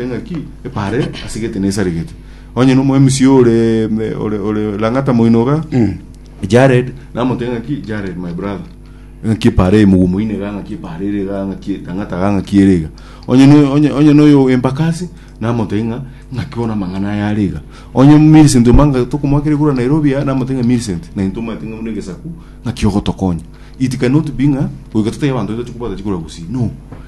Engaki epare asegete nesaregete onye no moemisi ore me- ore ore langata moinoga Jared namote ngaki Jared my brother ngaki epare mugu moine ga ngaki epare ere ga ngaki langata ga ngaki ere ga onye no onye onye no yo embakasi namote nga ngaki bona mangana ya riga onye Millicent omanga tokomwakere kura Nairobi ya namote nga Millicent na into mate ng'amuna egesaku ngaki ogotokonya it cannot be nga goika totebi abanto baito chikobwata chikura gusii no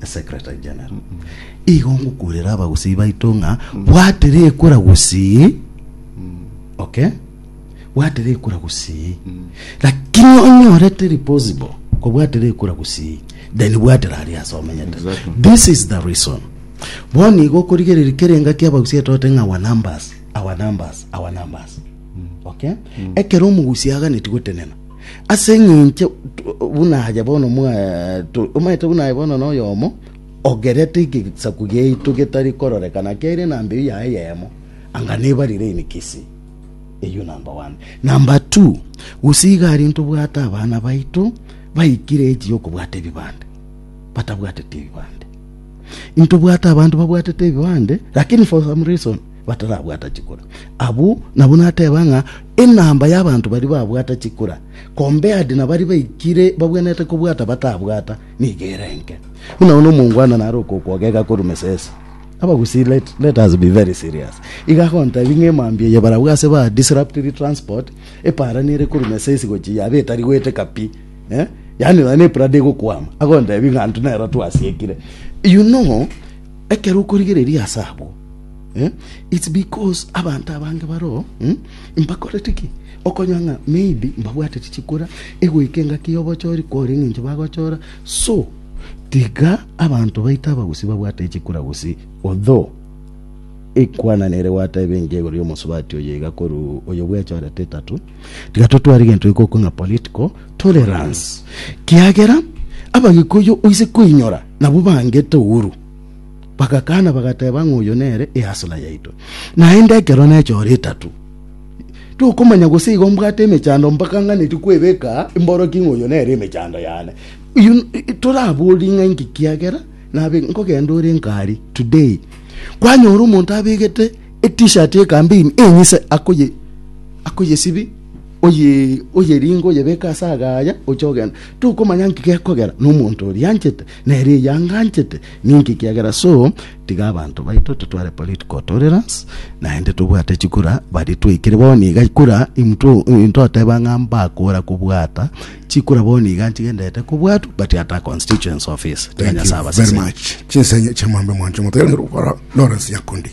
a secretary general igo ngokurera abagusii baito ng'a bwatera ekura gusii okay bwatera ekura gusii lakini onyorete reposible kobwatera ekura gusii then bwatera aria ase omenyete Exactly. this is the reason bono igo okorigereria kera engaki abagusii etote ng'a our numbers our numbers our numbers okay ekero omogusi aganeti gotenena Ase engencho buna aye bono omaete buna aye bono noyomo ogerete egesaku giaito getari kororekana kiaire na mbeu yaye eyemo, anga nebarire emegisi eyio number one. Number two, gose iga aria ntobwate abana baito baikire age yokobwata ebibande batabwatete ebibande. Intobwate abanto babwatete ebibande lakini for some reason batarabwata chikura. Abwo nabwo nateba ng'a enamba y'abanto baria babwata chikura compared na baria baikire babwenerete kobwata batabwata nigo ere enke. Buna bono omongwana nare okokwogeka korwa mesese, abagusii let, let us be very serious. Iga agontebia ng'a emambia eye barabwo ase ba disruptiri transport eparani ere korwa mesesi gochia yaba etari goeteka pi eh? yaani nonya na eprado egokwama agontebia ng'a intwe nero twasiekire you know Ekero okorigereria ase abwo, it's because abanto abange baroo mbakorete ki? Okonyora ng'a maybe mbabwatete chikura, egoika engaki y'obochori kwore eng'encho bagochora. So tiga abanto baito abagusii babwate chikura gusii, although ekwanana ere gwateba enchera igoro y'omosubati oyo iga korwa oyo bwechorete etatu, Tiga totware egento iko okwe ng'a political tolerance, kiagera Abagikuyu oise koinyora nabwo bangete ouru. Bagakana bagateba ng'a oyo nere easla yaito. Naende ekero nechora etatu tokomanya gose igo mbwate emechando mpaka ng'aneti kwebeka imboroki ng'a oyo nere emechando yane. You- Toraborie ng'a inki kiagera nabe nkogenda ore nkari today kwanyora omonto abegete Etishati ekambini enyise akoye akoyesibi oye oyeringe oyebeke ase agaya oche ogenda tokomanya nki gekogera na omonto oria anchete nere eyanga anchete ninki kiagera so tiga abanto baito totware political tolerance naende tobwate chikura baria twaikire bono iga kura imto intoteba ng'a mbakora kobwata chikura bono iga nchigenderete kobwatwa but ata constituency office tiga Thank nyasaye you very abaseseni much. Chinsa enye chiamambe mwancho motegerere gokora Lawrence Nyakundi.